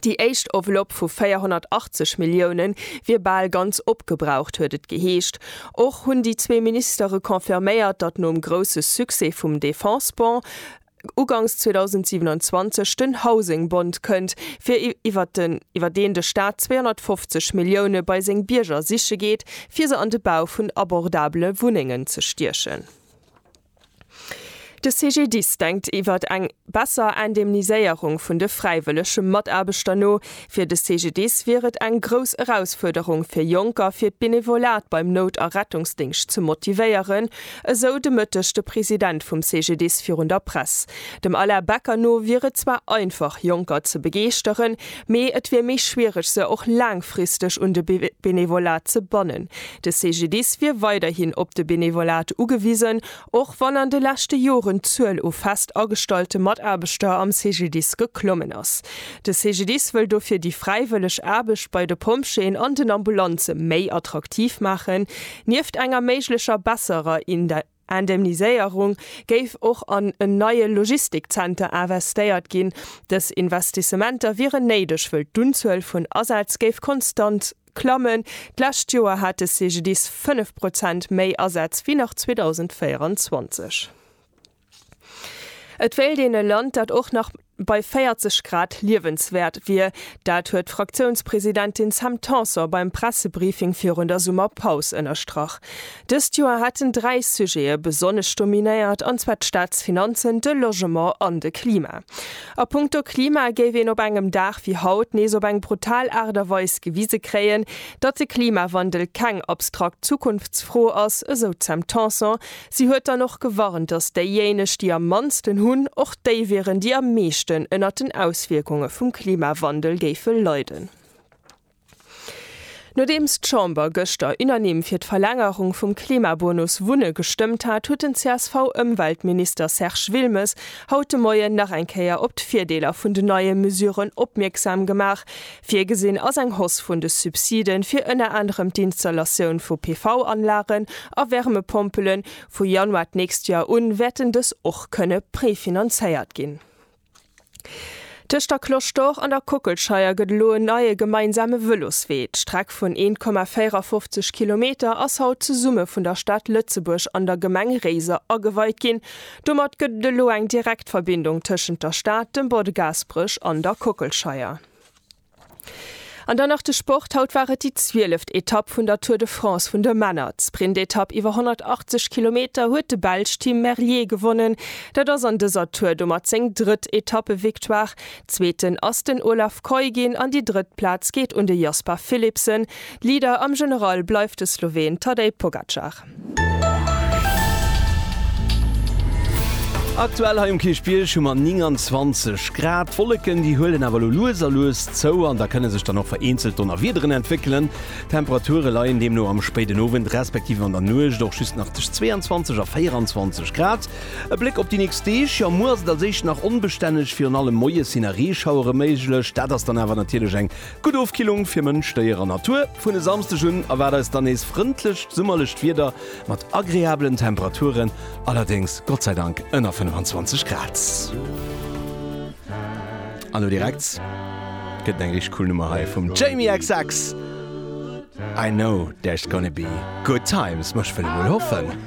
Déi éischt Enveloppe vu 480 Milliounen wier bal ganz opgebraucht, huet et geheescht. Och hunn déi zwee Ministere confirméiert, datt nom grousse Succès vum Defense-Bond ugangs 2027 den Housing Bond kënnt, fir iwwer deen de Staat 250 Millioune bei seng Bierger siche geet, fir se an de Bau vun abordabele Wunnengen ze stiechen. De CGDIS denkt iwwert eng besser Indemniséierung vun de fräiwëllege Mataarbechter no. Fir de CGDIS wier et eng grouss Erausfuerderung fir Jonker fir d'Benevolat beim Nout a Rettungsdéngscht ze motivéieren, esou de Mëtteg de President vum CGDIS virun der Press. Dem Alain Becker no wier et zwar einfach Jonker ze begeeschteren, Mee et wier méi schwiereg se och laangfristeg un de Benevolat ze bannen. De CGDIS wier weiderhin op de Benevolat ugewisen, och wann an de leschte Joren d'Zuel u fest agestallte Mataarbechter am CGDIS geklommen ass. De CGDIS wëll dofir déi fräiwëlleg Aarbecht bei de Pompjeeën an den Ambulanze méi attraktiv maachen, nieft enger méiglecher besserer Indemniséierung géif och an en neie Logistikzenter investéiert ginn. Dës Investissementer wieren néideg, wëll d'Unzuel vun Asätz géif konstant klammen. D'lescht Joer hat de CGDIS 5 Prozent méi Asätz wéi nach 2024. Et wéilt een e Land, dat och nach. bei 40 Grad liewenswäert wier. Dat huet d'Fraktiounspresidentin Sam Tanson beim Pressebriefing virun der Summerpaus ënnerstrach. Dëst Joer hätten dräi Sujete besonnesch dominéiert, an zwar d'Staatsfinanzen, de Logement an de Klima. A punkto Klima géif een op engem Dag wéi haut nees op eng brutal Aart a Weis gewise kréien, datt de Klimawandel keng abstrakt Zukunftsfro ass, esou d'Sam Tanson, Si huet dann och gewarnt, datt déijéineg, déi am mannsten hunn, och déi wieren, déi am meeschten ënnert den Auswierkunge vum Klimawandel géife leiden. Nodeems d'Chamber gëschter unanime fir d'Verlängerung vum Klimabonus Wunne gestëmmt hat, huet den CSV-Ëmweltminister Serge Wilmes haut de Moien nach eng Kéier op d'Virdeeler vun den neie Mesuren opmierksam gemaach, Virgesinn ass eng Hausse vun de Subside fir ënner anerem d'Installatioun vu PV-Anlagen a Wärmepompelen. Vu Januar d'nächst Joer un wäerten dës och kënne prefinanzéiert ginn. Tëscht der Cloche d'Or an der Kockelscheier gëtt elo en neie gemeinsame Vëloswee. D'Streck vun 1,54 Kilometer ass haut zesumme vun der Stad Lëtzebuerg an der Gemeng Réiser ageweit ginn. Domat gëtt et elo eng direkt Verbindung tëschent der Stad, dem Bord Gaasperech an der Kockelscheier. An dann nach de Sport, Haut war et déi zwieleft Etapp vun der Tour de France vun de Männer. D'Sprintetapp iwwer 180 Kilometer huet de Belsch Tim Merlier gewonnen. Dat ass an dëser Tour domat seng drëtt Etappevictoire. Zweeten ass den Olaf Kooij ginn an déi drëtt Plaz geet un de Jasper Philipsen. Leader am General bleift de Sloween Tadej Pogacar. Aktuell hei um Kierchbierg hu mer 29 Grad. D'Wolleken, déi huelen awer elo lues a lues zou an da kënne sech dann och vereenzelt Donnerwiederen entwéckelen. D'Temperature leien deemno am spéiden Owend respektiv an der Nuecht och just nach tëscht 22 a 24 Grad. E Bléck op déi nächst Deeg, jo, muer ass et als éischt nach onbestänneg, virun allem moies sinn nach Reeschauere méiglech. Dat ass dann awer natierlech eng Gutt Ofkillung fir Mënsch, Déier an Natur. Vun e Samsdeg un erwaart eis dann nees frëndlecht summerlecht Wieder mat agreabelen Temperaturen, allerdéngs Gott sei Dank ënner 25 Grad. An elo direkt gëtt et eng richteg cool Nummer hei vum Jamie xx, I know there's gonna be good times, ma ech wëll emol hoffen.